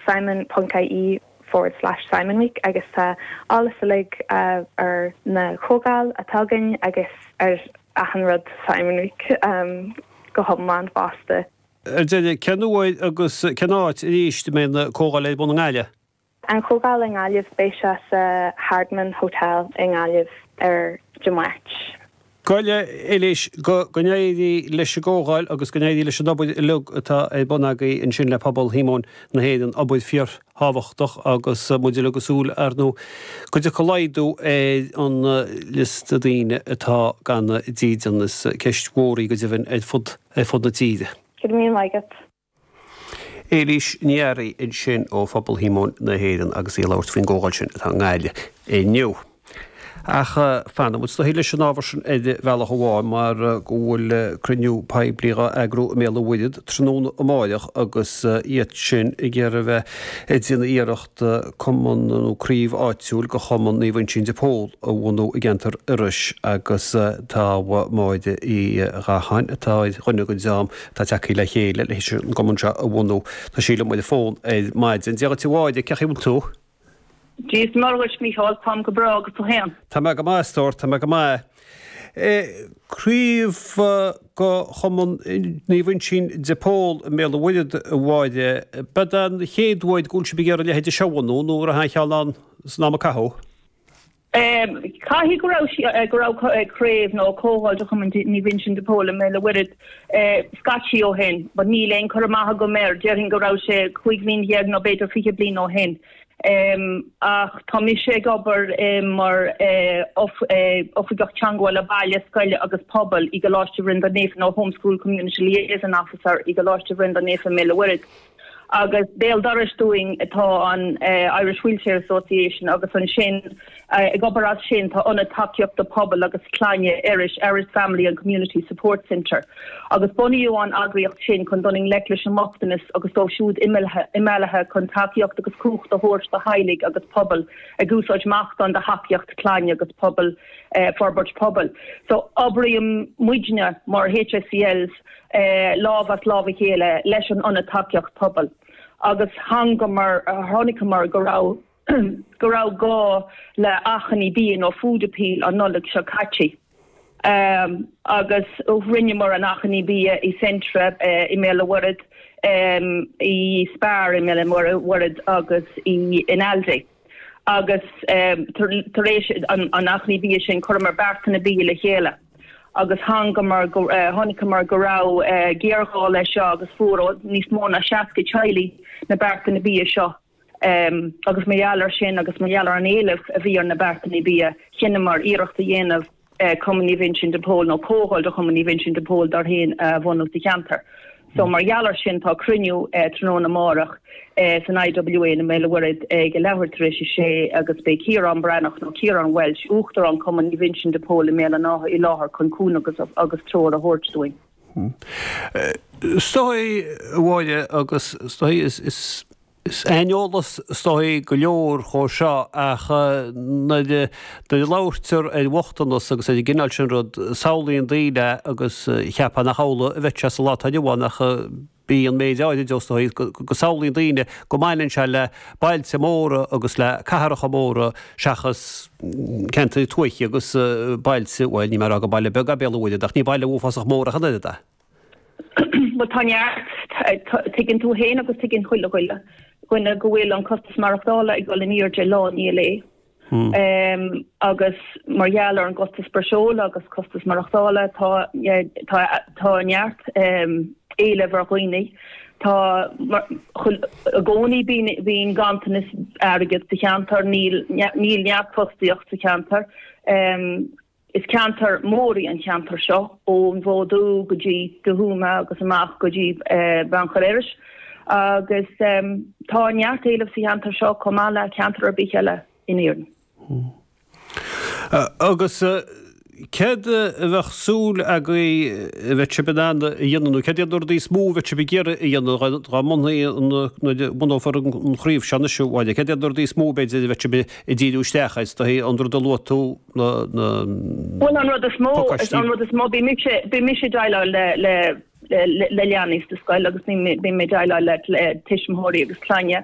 simon.ie forward slash simonweek agus tá eolas uilig ar na comhdháil atá againn agus ar achan rud simon week go hiomlán fosta. Ar deireadh, cén uair agus cén áit arís a mbeidh na comhdháil ar bun i nGaillimh? An chomhdháil i nGaillimh, beidh sé sa Hardiman Hotel i nGaillimh ar Dé Máirt. Bhuel a Éilís, go n-éirí leis an gcomhdháil agus go n-éirí leis an obair uilig atá ar bun agaí ansin le Pobal Shíomóin na hÉireann, obair fíorthábhachtach agus muid uilig ag súil, ar ndú, go dtiocfaidh laghdú ar an liosta daoine atá gan dídean. Is ceist mhór í go deimhin ar fud na tíre. Go raibh míle maith agat. Éilís Ní Fhearraigh ansin ó Phobal Shíomóin na hÉireann agus í ag labhairt faoin gcomhdháil sin atá i nGaillimh inniu. Ach fanfaidh muid is dóichí leis an ábhar sin ar bhealach amháin mar go bhfuil cruinniú poiblí á eagrú i mBéal an Mhuirthead tráthnóna amárach agus iad sin ag iarraidh bheith ag déanamh iarracht cumann nó craobh áitiúil de Chumann Naomh Uinsín de Pól a bhunú i gceantar Iorrais agus tá Máire Uí Ghacháin atá ar dhuine den dream atá tagthaí le chéile leis an gcumann seo a bhunú. Tá sí liom ar an fón ar maidin. Dia dhuit a Mháire, cé chaoi bhfuil tú? Dia is Muire dhuit Mícheál, táim go breá agus tú fhéin? Tá mé go maith a stór, tá mé go maith. Craobh de Chumann Naomh Uinsín de Pól i mBéal an Mhuirthead a Mháire. Ab eod é an chéad uair go bhfuil sibh ag iarraidh a leithéid seo a bhunú nó raibh aon cheann ann san am a caitheadh? Caithfidh go raibh sí, go raibh craobh nó comhdháil de Chumann Naomh Uinseann de Pól i mBéal an Mhuirthead scaití ó shin, but níl aon chur amach agam air, déarfainn go raibh sé cúig bhliain dhéag nó b'fhéidir fiche bliain ó shin. Ach tá mise ag obair mar Oifigeach Teangmhála Baile, Scoile agus Pobail i gColáiste Bhreandáin Naofa nó Home School Community Liaison Officer i gColáiste Bhreandáin Naofa i mBéal an Mhuirthead. Agus béal dorais dúinn atá an Irish Wheelchair Association agus ansin ag obair as sin tá Ionad Tacaíochta Pobail agus Clainne, Iorrais, Erris Family and Community Support Centre agus bunaíodh an eagraíocht sin chun dul i ngleic leis an mbochtanas agus dóibh siúd imeallaithe chun tacaíocht agus cumhacht a thabhairt do theaghlaigh agus pobail ag úsáid meascán de thacaíocht clainne agus pobail, forbairt pobail. So obraíonn muidne mar HSCLs. lámh as lámh a chéile leis an Ionad Tacaíocht Pobail agus chonaiceamar go raibh go raibh gá le achainí bia nó food appeal an Nollaig seo caite agus rinneamar an achainí bia i Centra i mBéal an Mhuirthead, i Spar i mBéal an Mhuirthead agus in Aldi. agus tar éis an achainí bia sin chuireamar beartanna bia le chéile agus chonaiceamar go raibh géarghá leis seo agus fuair níos mó ná 60 teaghlach na beartanna bia seo agus mar gheall air sin agus mar gheall ar an éileamh a bhí ar na beartanna bia chinneamar iarracht a dhéanamh Cumann Naomh Uinseann de Pól nó Comhdháil de Chumann Naomh Uinseann de Pól dár gcuid féin a bhunú sa cheantar. So mar gheall ar sin tá cruinniú tráthnóna amárach san IWA i mBéal an Mhuirthead ag a leathuair tar éis a sé agus beidh Ciarán Breathnach nó Ciarán Walsh, Uachtarán Cumann Naomh Uinseann de Pól i mBéal an Átha i láthair chun cúnamh agus treoir a thabhairt dúinn. Is dóigh, a Mháire, agus is dóigh gur. aineolas is dóigh go leor dhe seo ach nuair a labhairtear ar bhochtanas agus ar an gcineál sin rud, samhlaíonn daoine agus cheapfá nach amhlaidh a bheadh sé sa lá atá inniu ann ach bhí an méid áirid dhe, is dóigh go samhlaíonn daoine go mbaineann sé le bailte móra agus le cathracha móra seachas ceantair tuaithe agus bailte, bhuel níl mé ag rá gur baile beag é Béal an Mhuirthead ach ní baile uafásach mór ach an oiread é. Bhuel, tá neart. Tuigeann tú féin agus tuigeann chuile dhuine dhuine go bhfuil an costas maireachtála ag dul in airde lá i ndiaidh lae. Agus mar gheall ar an gcostas breosla agus costas maireachtála, tá tá neart éilimh ar dhaoine. Tá i gcónaí bíonn bíonn ganntanas airgid sa cheantar, níl níl neart fostaíocht sa cheantar. Is ceantar mór í an cheantar seo, ón bhFód Dubh go dtí Dumha Thuama agus amach go dtí Beannchar Iorrais, agus tá neart éilimh sa cheantar seo chomh maith le ceantar ar bith eile in Éirinn. Agus céard a bheadh súil agaibh a bheidh sibh in ann a dhéanamh, nó céard iad na rudaí is mó a bheidh sibh ag iarraidh a dhéanamh dá mbunófaí an, nuair a bhunófar an chraobh seo anois, a Mháire, céard iad na rudaí is mó b'fhéidir a bheidh sibh ag díriú isteach air, is dóigh, i ndiaidh an rud a luaigh tú. Bhuel, an rud is mó, an rud is mó, bhí mise, bhí mise ag déileáil le, le, le, le leanaí sa scoil agus bhí, bhí mé ag déileáil le, le tuismitheoirí agus clainne